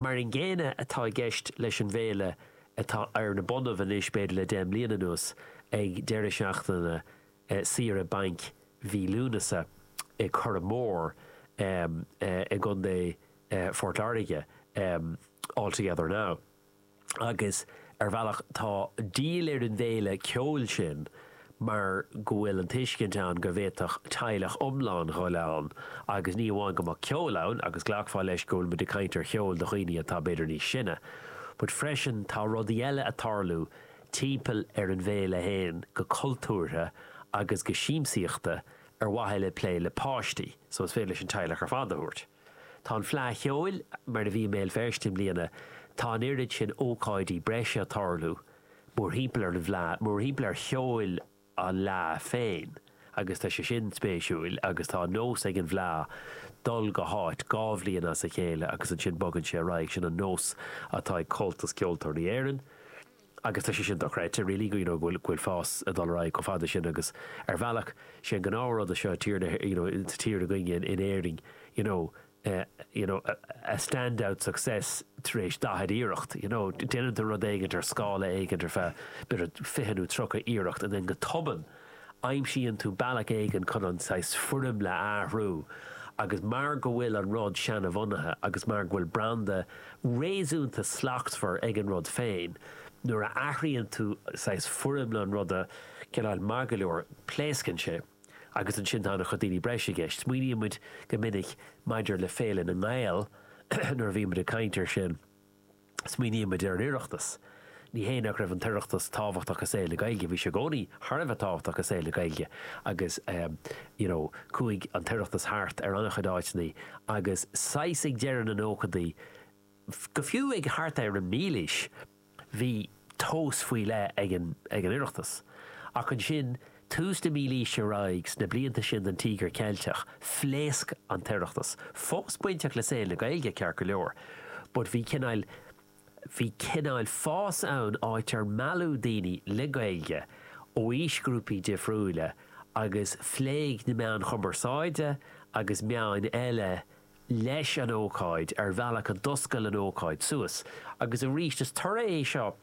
Mar an gcéanna atá i gceist leis an bhféile atá ar na bonnaibh anois, b'fhéidir, le deich mbliana anuas, ag deireadh seachtaine saoire bainc mhí Lúnasa i Curragh Mór i gContae Phort Láirge, All Together Now. Agus ar bhealach tá díol ar an bhféile ceoil sin, mar go bhfuil an tuiscint ann go bhféadfadh teaghlach iomlán dhul ann agus ní amháin go mbeadh ceol ann, agus glacfá leis go bhfuil muid ag caint ar cheol do dhaoine atá b'fhéidir níos sine, but freisin tá rudaí eile a tarlú timpeall ar an bhféile a théann go cultúrtha agus go siamsaíochta ar mhaithe le plé le páistí, so is féidir leis an teaghlach ar fad a thabhairt. Tá an Fleadh Cheoil mar a bhí i mBéal Feirste i mbliana, tá an oiread sin ócáidí breise ag tarlú mórthimpeall ar an bhFleadh, mórthimpeall ar cheol an Fhleadh féin agus tá sé sin spéisiúil agus tá an nós ag an bhFleadh dul go háit dhá bhliain as a chéile agus ansin bogann sé ar aghaidh, sin an nós atá ag Comhaltas Ceoltóirí Éireann. Agus tá sé sin dochreidte, really, you know, go bhfuil fás ag dul ar aghaidh chomh fada sin agus, ar bhealach, sé an gnáth-rud i seo, tír na, you know, sa tír againne, in Éirinn, you know, you know, a stand-out success tar éis daichead iarracht, you know, déanann tú rud éigint ar scála éigint ar feadh, b'fhéidir, fiche nó tríocha iarracht and then go tobann, Aimsíonn tú bealach éigin chun an saghas foirmle a athrú agus mar go bhfuil an rud seana-bhunaithe agus mar go bhfuil branda réasúnta slachtmhar ag an rud féin, nuair a athraíonn tú saghas foirmle an ruda, cineál maith go leor, pléascann sé agus ansin tá ana chuid daoine breise i gceist. Smaoiníonn muid go minic maidir le féilte na nGael nuair a bhíonn muid ag caint ar sin. Smaoinímid ar an Oireachtas. Ní hé nach raibh an tOireachtas tábhachtach i saol na Gaeilge, bhí sé i gcónaí thar a bheith tábhachtach i saol na Gaeilge agus you know chuaigh an tOireachtas thart ar an-chuid áiteanna agus saghas ag deireadh na nóchaidí nó fiú ag thart ar an mílaois bhí tóin faoi leith ag an Oireachtas, ach ansin, tús na mílaoise ar aghaidh, sna blianta sin den Tíogar Ceilteach, phléasc an tOireachtas. Fós bainteach le saol na Gaeilge, ceart go leor, but bhí cineál, bhí cineál fás ann, áit ar mealladh daoine le Gaeilge ó aoisghrúpaí difriúila agus phléigh na meáin chumarsáide agus meáin eile leis an ócáid ar bhealach a d'oscail an ócáid suas agus arís is toradh é seo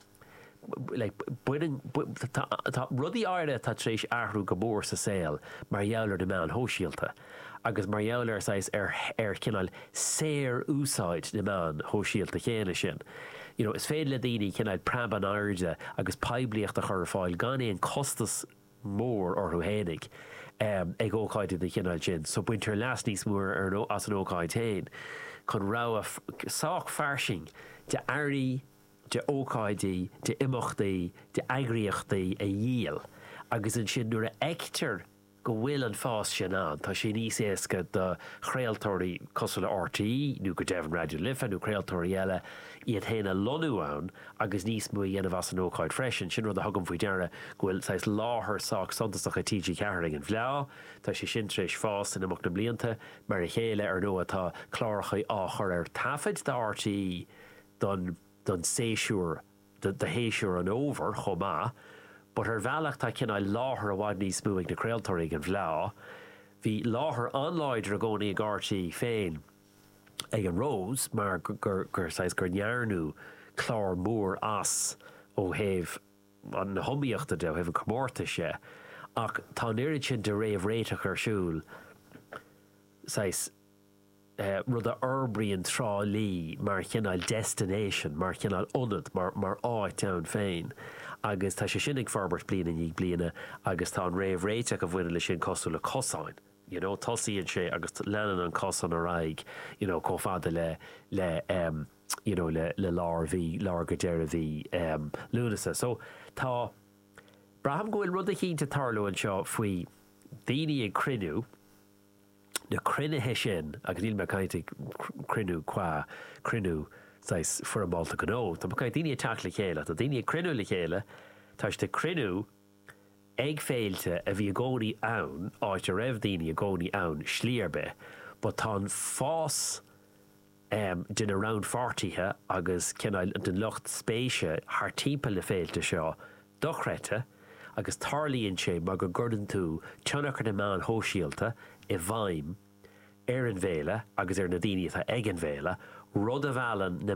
tá rudaí áirithe atá tar éis athrú go mór sa saol mar gheall ar na meáin shóisialta agus mar gheall ar saghas ar ar cineál saorúsáid na meáin shóisialta chéanna sin you know is féidir le daoine cineál preab in airde agus poiblíocht a chur ar fáil gan aon costas mór orthu fhéinig ag ócáidí den chineál sin so baintear leas níos mó as an ócáid féin chun rogha sách fairsing de earraí, de ócáidí, de imeachtaí, de eagraíochtaí a dhíol agus ansin nuair a fheictear go bhfuil an fás sin ann tá sé níos éasca do chraoltóirí cosúil le RTÉ nó go deimhin Raidió na Life nó craoltóirí eile iad fhéin a lonnú ann agus níos mó a dhéanamh as an ócáid freisin. Sin rud a thugaim faoi deara, go bhfuil saghas láthair sách suntasach ag TG4 ag an bhFleá. Tá sé sin tar éis fás in imeacht na mblianta. Mar a chéile, ar ndóigh, tá cláracha á chur ar taifead do RTÉ don séasúr, do shéasúr an Fhómhair chomh maith. But ar bhealach, tá cineál láthair i bhfad níos mó ag na craoltóirí ag an bhFleá. Bhí láthair an-láidir i gcónaí ag RTÉ féin. ag an Rós mar gur saghas, gur ndearnadh clár mór as ó thaobh na hiomaíochta de, ó thaobh an chomórtais de ach tá an oiread sin de réamhréiteach ar siúl, saghas, rud a fhorbraíonn Trá Lí mar chineál destination, mar chineál ionad, mar áit ann féin agus tá sé sin ag forbairt bliain i ndiaidh bliana agus tá an réamhréiteach a bhaineann leis sin cosúil le cosáin. you know, tosaíonn sé agus leanann an cosán ar aghaidh, you know, chomh fada le, le, um, you know, le, le lár mhí, lár go deireadh mhí, um, Lúnasa. So, tá, braithim go bhfuil rud eicínt ag tarlú anseo faoi daoine ag cruinniú, na cruinnithe sin, agus níl mé ag caint ag cruinniú cua, cruinniú, saghas, foirmeálta gnó, tá mé ag caint daoine ag teacht le chéile, tá daoine ag cruinniú le chéile, tá siad ag cruinniú, Ag féilte a bhí i gcónaí ann, áit a raibh daoine i gcónaí ann slí ar bith, but tá an fás de na rannpháirtithe agus cineál den lucht spéise thart timpeall na féilte seo dochreidte agus tarlaíonn sé mar go gcuireann tú tionchar na meáin shóisialta i bhfeidhm ar an bhféile agus ar na daoine atá ag an bhféile, rud a mheallann na